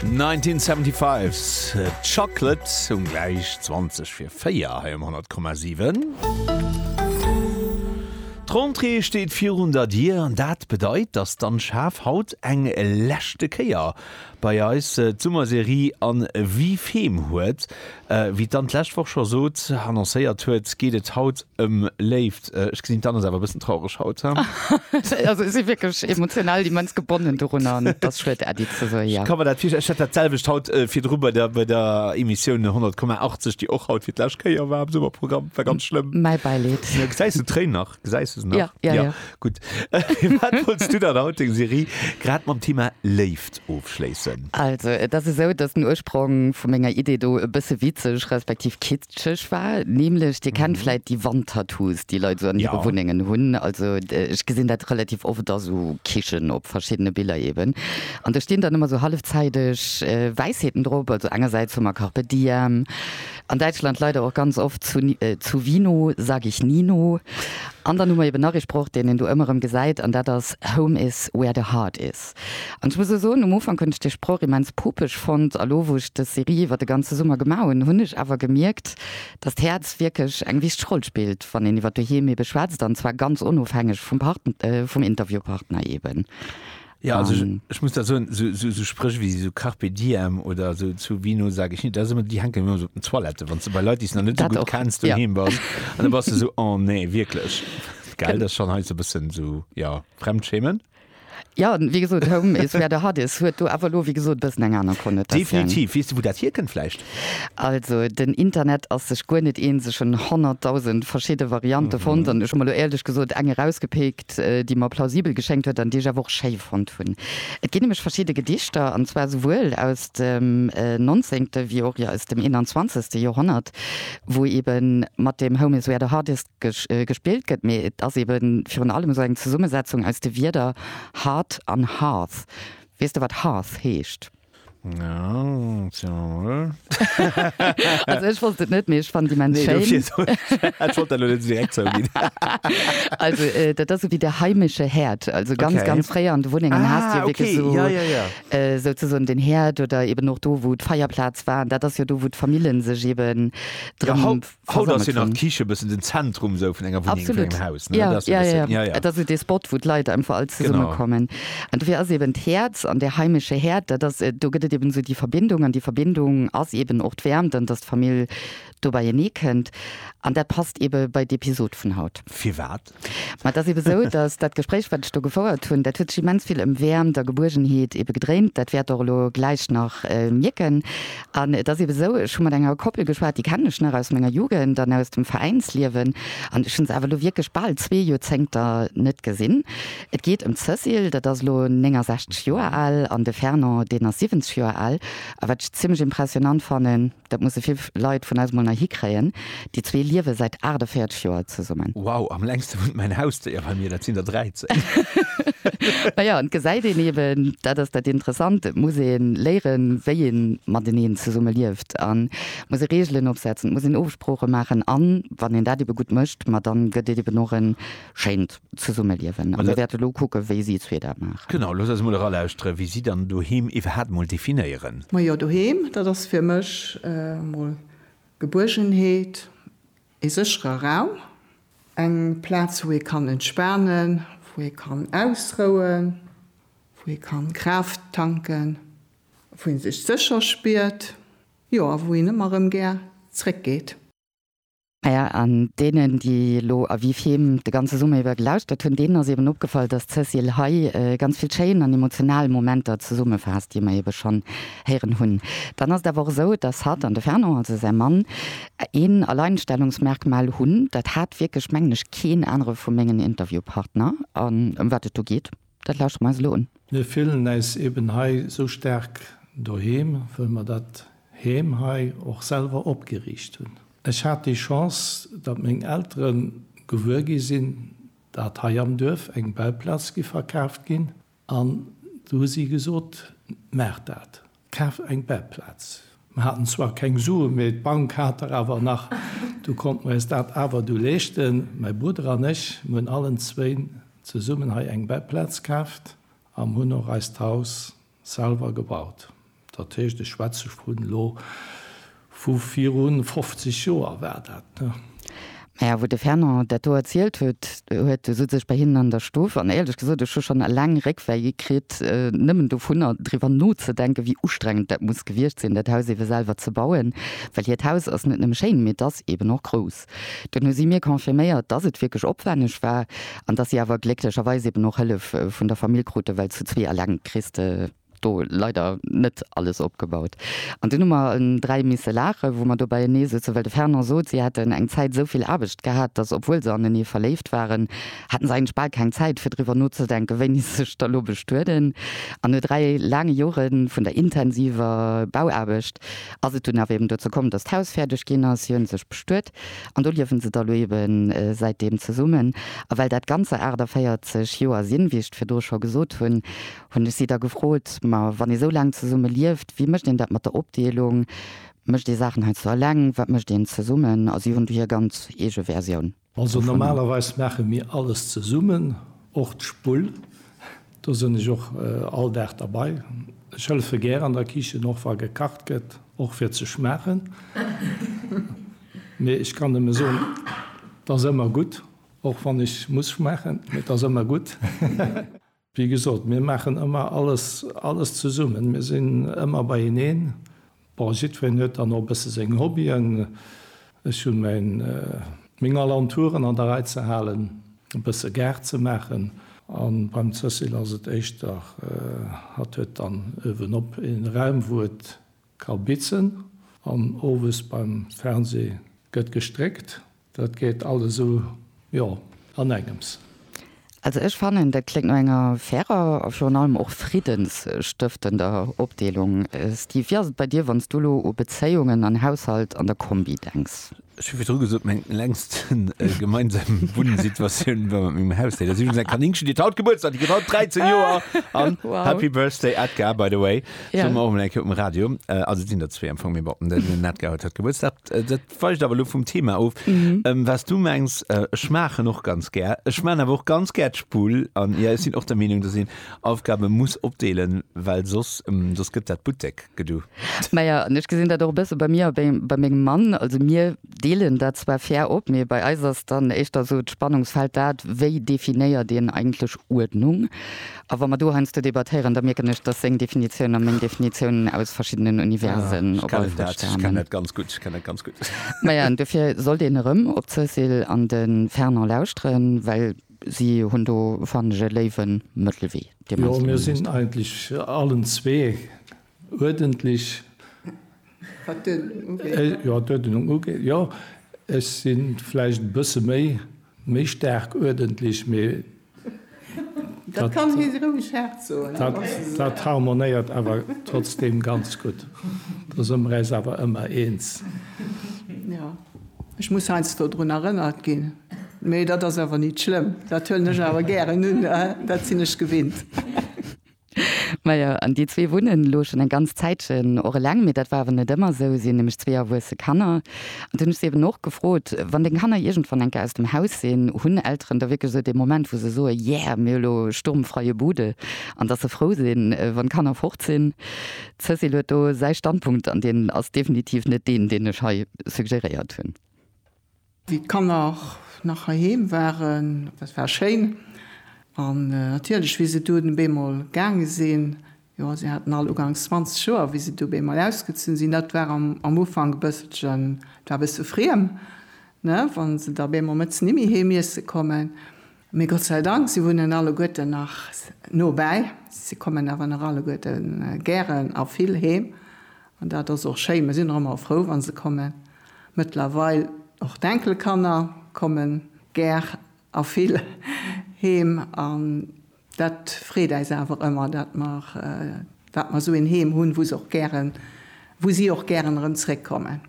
1975 Chocolate um gläich 20 fir 4 hei um 10,7. D'Rentrée steet virun der Dier an dat bedeit, dass d'Anne Schaaf haut eng leschte Kéier bei eis d'Summerserie an Wie Fem huet. Wéi d'Anne d'lescht Woch scho sot, annoncéiert huet, geet et haut ëm Léift. Ech gesinn, d'Anne ass awer e bëssen traureg haut, haa? Also ech si wierklech emotional immens gebonnen dorunner an et ass schued, Äddi ze soen, jo. Ech ka mer dat virstellen. Ech hat dat selwecht haut virdru bei der, bei der Emissioun 100,80, déi och haut fir d'lescht Kéier war am Summerprogramm. War ganz schlëmm. Mäi Bäileed. Gesäis du d'Tréin nach? Gesäis du se nach? Ja, ja, ja. Gutt. Wat wolls du dann haut deng Serie grad mam Thema Léift ofschléissen? Also, et ass esou, dass den Ursprong vu menger Idee do e bësse witzeg respektiv kitscheg war. Nämlech, dir kennt vläit déi Wandtattoos, déi Leit esou an hire Wunnengen hunn. Also, ech gesinn dat relativ oft a sou Kichen, op verschiddene Biller eeben. An do stinn dann ëmmer sou hallefzäiteg Wäisheeten drop. Also engersäits hu mer Carpe Diem. An Däitschland leider och ganz oft zu zu Vino sag ich Nino. An dann hu mer eben nach ee Sproch, deen een do ëmmer erëm gesäit, an dat ass Home is where the heart is. An ech muss lech soen, um Ufank hunn ech dee Sproch immens pupeg fonnt, a lo wou ech dës Serie iwwer de ganze Summer gemaach hunn, hunn ech awer gemierkt, dass d'Häerz wierklech eng wichteg Roll spillt, wann een iwwer d'Doheem ebe schwätzt, an zwar ganz onofhängeg vum Part vum Interviewpartner eben. Ja, also ähm, ich, ich muss da so, so, so, so sprich wie so Carpe Diem oder so zu Vino sage ich nicht, das immer die hängen immer so auf den Toilette, wenn du bei Leute die noch nicht so gut auch. kennst du ja. hin bist, dann warst du so oh nee wirklich, geil, das ist schon halt so ein bisschen so ja Fremdschämen. Ja wie gesot Home is wer der hat is huet du awer lo wie gesot bëssen eng aner kon net. Definitiv wiest du wo dat hier kënnt flecht. Also den Internet ass sech guer net een sechen 100.000 verschschiide Variante mhm. fond an ech mal lo älech gesot eng rausgepeek Konzept, déi mer plausibel geschéngt huet an déi ech awer och schéi fonnt hunn. Et ginn nämlech verschidde Gedichter, an zwar souwuel aus dem nonzéngte wéi och aus dem eenanzwanzegste Joerhonnert, wou eebe mat deem Home is where the heart is gespillt gëtt, mee et ass eebe virun allem esou eng Zesummesetzung aus de Wierder heart an hearth. Weess de, wat hearth heescht? Also ech wollt et net méi ech fan déi Mensch Also dat ass ewéi de heimesche Häerd, also ganz okay. ganz fréier an de Wunnengen ah, hast jo okay. so, ja, ja, ja. Äh, so ze son den Häerd oder eben och do wou d'Feierplaz war, dat ass jo do wou d'Famillen sech eben dran ja, Haut ass jo nach d'Kiche e bëssen den Zentrum esou vun enger Wunneng, vun engem Haus, ne? Dat ass e bëssen, ja, ja. Et ass esou dee Spot, wou d'Leit einfach all zesumme kommen. Genau. An dofir ass eben d'Häerz an dee heimesche Häerd, dat ass, do gëtt et eben esou déi Verbindung. An déi Verbindung ass eben och d'Wäermt an dass d'Famill do beienee kënnt. An dat passt ebe bei d'Episod vun haut. Firwat? Mä et ass ebe sou, datt dat Gespréich, wat ech do gefouert hunn, dat huet sech immens vill ëm Wäermt a Gebuergenheet ebe gedréint. Dat wäert Der och elo gläich nach mierken. An et ass ebe sou, ech hu mat enger Koppel geschwat, déi kennen ech nach aus menger Jugend an aus dem Veräinsliewen. An ech hunn se awer elo wierklech bal zwee Joerzéngter net gesinn. Et geet ëm d'Cécile, dat ass elo 69 Joer al, an de Fernand, deen ass 70 Joer al. A wat ech zimmlech impressionnant fannen, Dat musse vill Leit vun eis mol nei hikréien. Déi zwee liewe säit 48 Joer zesummen. Wow, am längste wunnt mäin Hausdéier bei mir, dat sinn der 13. Naja, an et gesäit een eben, dat ass dat Interessant, et muss ee léieren, wéi ee mateneen zesumme lieft an et muss ee Reegelen opsetzen, et muss een Ofsprooche maachen an wann een dat ebe gutt mécht, ma dann gëtt et eben och en schéint Zesummeliewen. A mir wäerte elo kucken, wéi si zwee dat maachen. Genau, looss eis mol eralauschteren, wéi si dann doheem iwwerhaapt mol definéieren. Majo, doheem, dat ass fir mech emol Gebuergenheet, ee séchere Raum, eng Plaz, wou ee kann entspanen, wou ee kann ausrouen, wou ee kann Kraaft tanken, wou ee sech sécher spiert, jo, a wou een ëmmer erëm gär zréckgeet. Naja, an deenen, déi elo A Vif Heem de ganze Summer iwwer gelauschtert hunn, deenen ass eeben opgefall, dass d'Cécile hei ganz vill schéin an emotional Momenter zesummefaasst, déi mer eebe schonn héieren hunn. Dann ass et awer och esou, dass hatt an de Fernand, also säi Mann, een Alleinstellungsmerkmal hunn, dat hat wierklech, mengen ech, keen anere vu mengen Interviewpartner, an ëm wat et do geet. Dat lauschteren mer eis elo un. Mir fillen äis eben hei sou staark doheem, wëll mer dat Heem hei och selwer opgeriicht hunn. Ech hat déi Chance, datt meng Eltere gewuer gi sinn, datt hei am Duerf eng Bauplaz géif verkaaft ginn, an du hu si gesot, Maach dat! Kaaft eng Bettplaz. Mer haten zwar keng Suen, mee d'Bank hat der awer nach. Du konnten mer eis dat awer du leeschten. Mäi Brudder an ech, mir hunn allen zwéin zesummen hei eng Bettplaz kaaft am hunn och eist Haus selwer gebaut. Dat heescht, ech schwätze vun elo. Vu virun 50 Joer war dat, ne? Maja, wou de Fernand dat do erzielt huet, huet e sutz ech bei hinnen an der Stuff, an éierlech gesot, ech hu schonn eleng Réckwéi kritt, nëmmen dovunner driwwer nozedenken, wéi ustrengend dat muss gewiescht sinn, dat Haus eebe selwer ze bauen. Well hiert Haus ass net nëmme schéin, mee et ass eeben och grouss. Dunn hu si mir confirméiert, dass et wierklech opwänneg war, an dass si awer glécklecherweis eeben och Hëllef vun der Famill kruten, well zu zwee eleng kriss de do leider net alles opgebaut. An dunn hu mer en dräi misse laachen, wou mer dobäienee souzen, well de Fernand sot, si hätten eng Zäit esou vill Aarbecht gehat, datt, obwuel se anenee verléift waren, hätten se eigentlech bal keng Zäit, fir driwwer nozedenken, wéini se sech da lo bestueden. An no dräi laange Jore vun der intensiver Bauaarbecht ass et dunn awer eben dozou komm, datt d'Haus fäerdeg ginn ass. Si hu sech bestuet an do liewen se da lo ebe säitdeem zesummen. A well dat Ganzer 48 Joer sinn, wéi ech et virdu scho gesot hunn, Hunn ech si da gefrot, Ma wann ee sou laang zesumme lieft, wéi mécht een dat mat der Opdeelung? Mécht ee Saachen heiansdo eleng? Wat mécht een zesummen? A si hunn du hir ganz eege Versioun dovun. Also normalerweis maache mir alles zesummen, och d'Spull. Do sinn ech och all Dag derbei. Ech hëllefe gär an der Kichen, och wa gekacht gëtt, och fir ze schmaachen. Mee ech kann nëmme soen, 't ass ëmmer gutt, och wann ech muss schmaachen, mee 't ass ëmmer gutt. Wéi gesot, mir maachen ëmmer alles, alles zesummen. Mir sinn ëmmer beieneen. Bon, jiddwereen huet dann och e bësse seng Hobbyen. Ech hu mäin, meng Alentouren an der Rei ze halen, e bësse Gaart ze maachen. A beim Cécile ass et éischter, hatt huet dann uewen op ee Raum, wou et ka bitzen. An owes beim Fernseh gëtt gestréckt. Dat geet alles esou, jo, an engems. Also ech fannen, dat kléngt no enger fairer a virun allem och friddensstëftender Opdeelung. Steve, wéi ass et bei dir, wann s du elo u Bezéiungen an Haushalt an der Kombi denks? Ech hu virdru gesot, meng längst gemeinsam Wunnsituatioun war mat mengem Hausdéi. Dat ass iwwregens eng Kaninkchen, déi hat haut Gebuertsdag, déi kritt haut 13 Joer. An Happy Birthday Edgar, by the way, soe mer och emol eng Kéier um Radio. Also et sinn der zwee am Fong, mee bon, den Edgar huet haut Gebuertsdag. weicht awer lo vum Thema of. Ähm, was du mengs, äh, ech maachen och ganz gär. Ech man awer och ganz gär d'Spull an ja, ech sinn och der Meenung, dass een Aufgabe muss opdeelen, well soss, ähm, soss gëtt dat Buttek-Gedu. Maja, an ech gesinn dat och e bësse bei mir a bei, bei mengem Mann. Also mir deelen dat zwar fair op, mee bei eis ass dann éischter esou d'Spannungsfeld dat, wéi definéiert een eigentlech Uerdnung? A wa mer do heiansdo debattéieren, da mierken ech, dass seng Definitioun a meng Definitioun aus verschiddenen Universen op emol stamen. Ech kennen dat ganz gutt, ech kennen dat ganz gutt. Maja, an dofir sollt een erëm op d'Cécile an de Fernand lauschteren, well si hunn do, fannen ech, e léiwe Mëttelwee, dee mer eis do gemaach hunn. Jo, mir sinn eigentlech allen zwee uerdentlech, wat d'Uerdenung ugeet, jo, ech si vläicht e bësse méi staark uerdentlech, mee Dat kann hie si roueg haart soen. Dat harmonéiert awer trotzdeem ganz gutt, do si mer äis awer ëmmer eens. Jo, ech muss heiansdo drun erënnert ginn, mee dat ass awer nit schlëmm, dat huelen ech awer gären un, dat sinn ech gewinnt. Majo, an déi zwee wunnen elo schonn eng ganz Zäitchen och eleng. Mee dat war awer net ëmmer esou. Si hunn nämlech zwee erwuesse Kanner. An dunn hu ech se eben och gefrot, Wann deng Kanner iergendwann eng Kéier aus dem Haus sinn, hunn Elteren da wierklech esou dee Moment, wou se soe Yeah, mir hu lo sturmfreie Bude, an dass se frou sinn, wann d'Kanner fort sinn? D'Cécile huet do säi Standpunkt, an deen ass definitiv net deen, deen ech hei suggéréiert hunn. Wéi d'Kanner nach heiheem waren, dat war schéin. An natierlech, wéi se du dunn bémol gaange sinn, jo, se haten all uganks 20 Joer, wéi se du bémol ausgezunn sinn, dat war am Ufank e bësselchen, et war e bësse friem, ne, wa se da bémol mëttes nimmi heem iesse kommen. Mee Gott sei Dank, se wunnen alleguerten nach nobäi. Se kommen awer nach alleguerten gären a vill heem. An dat ass och schéi, mer sinn och ëmmer frou wa se kommen. Mëttlerweil och d'Enkelkanner komme gär a vill heem an dat freet äis awer ëmmer, dat mer dat mer esou een Heem hunn, wou se och gären wou si och gären erëm zréckkommen.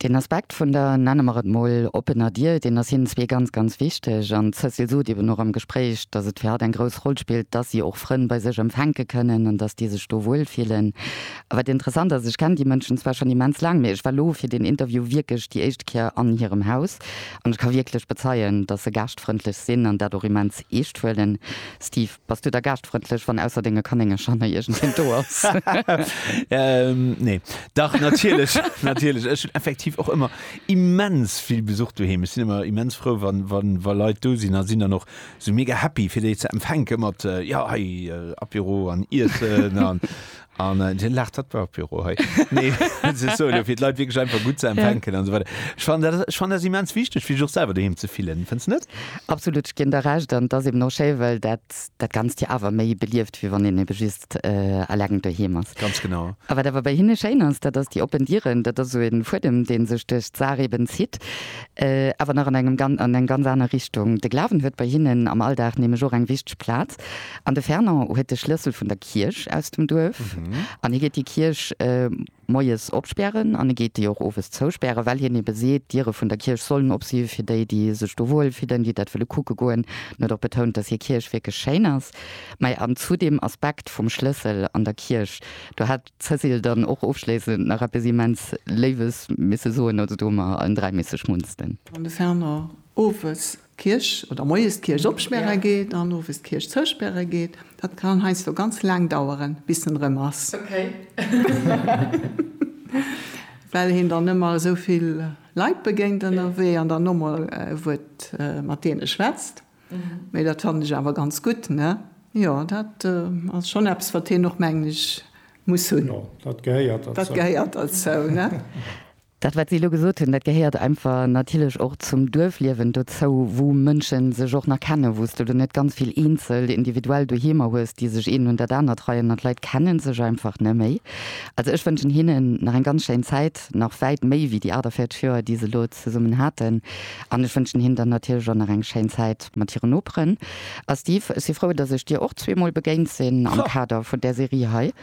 Deen Aspekt vun der, nenne mer et mol, oppener Dier, deen ass hinnen zwee ganz, ganz wichteg. An d'Cécile sot eben och am Gespréich, dass et fir hatt eng grouss Roll spillt, dass si och Frënn bei sech empfänke kënnen an dass déi sech do wuel fillen. A wat interessant ass, ech kenn déi Mënschen zwar schonn immens laang, mee ech war elo fir deen Interview wierklech déi éischt Kéier an hirem Haus an ech ka wierklech bezeien, dass se gaaschtfrëndlech sinn an dat och immens eescht huelen. Steve. Bass du da gaaschtfrëndlech, wann ausser denge Kanéngercher nach iergendween do ass? Nee. Dach, natierlech, natierlech. Ech hunn effektiv och ëmmer immens vill Besuch doheem. Ech sinn ëmmer immens frou, wa, wa, wa Leit do sinn a sinn dann och sou mega happy, fir déi ze empfänke mat, jo, hei Apéro an Iessen an, An den laacht hat war Büro hei nee so fir die Leute wirklich einfach gut ze empfänken an so weiter ich fand das ich fand das immens wichtig wie auch selber daheim ze fillen findst net absolut ich gin der recht an das eben no schéi well dat dat ganz dir awer méi belieft wie wann een eben just äh, alleng doheim ass ganz genau a wat awer bei hinne schéin ass dat ass die oppen dieren dat ass so een fuedem deen sech durch d'saach eben zitt äh, awer nach an engem gan an eng ganz aner richtung de glawen huet bei hinnen am alldag nämlech och eng wichteg platz an de fernand huet de schlëssel vun der Kierch aus dem Duerf an hie geet déi Kierch moies opspären an e geet déi och owes zouspären, well hien ebe seet, d'Diere vun der Kierch sollen op si fir déi, déi sech do wuel fillen, déi dat wëlle kucke goen. En huet och betount, datt hir Kierch wierklech schéin ass. Mä an zu deem Aspekt vum Schlëssel an der Kierch, do hat d'Cécile dann och ofschléissend nach eppes immens Léiwes misse soen, also do hu mer allen dräi misse schmunzelen. An de Fernand owes d'Kierch oder moies d'Kierch opspäre geet an owes d'Kierch zouspäre geet, dat kann heiansdo ganz laang daueren, bis en erëm ass, well een dann ëmmer esou vill Leit begéint ënnerwee an dann nochmol e Wuert mat deene schwätzt. Mee dat fannen ech awer ganz gutt, ne? Jo, dat ass schonn eppes, wat een och, mengen ech, muss hunn. Jo, dat gehéiert derzou. Dat gehéiert derzou, ne? Dat wat si elo gesot hunn, dat gehéiert einfach natierlech och zum Duerfliewen dozou, wou Mënsche sech och nach kennen, wou s de elo net ganz vill eenzel individuell Doheemer hues, déi sech een un dat anert reien an d'Leit kenne sech einfach neméi. Also ech wënschen hinnen nach eng ganz schéin Zäit, nach wäit méi wéi déi 48 Joer déi se elo zesummen haten an ech wënschen hinnen dann natierlech och nach eng schéin Zäit mat hiren Noperen. A Steve, ech si frou datt ech dir och zweemol begéint sinn am Kader vun där Serie hei.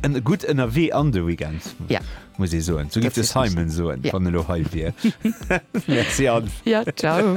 En gudd Ënnerwee an de Weekend muss ee soen. Sou géif de Simon soen, wann e lo hei wier. Merci Anne. Ja, ciao.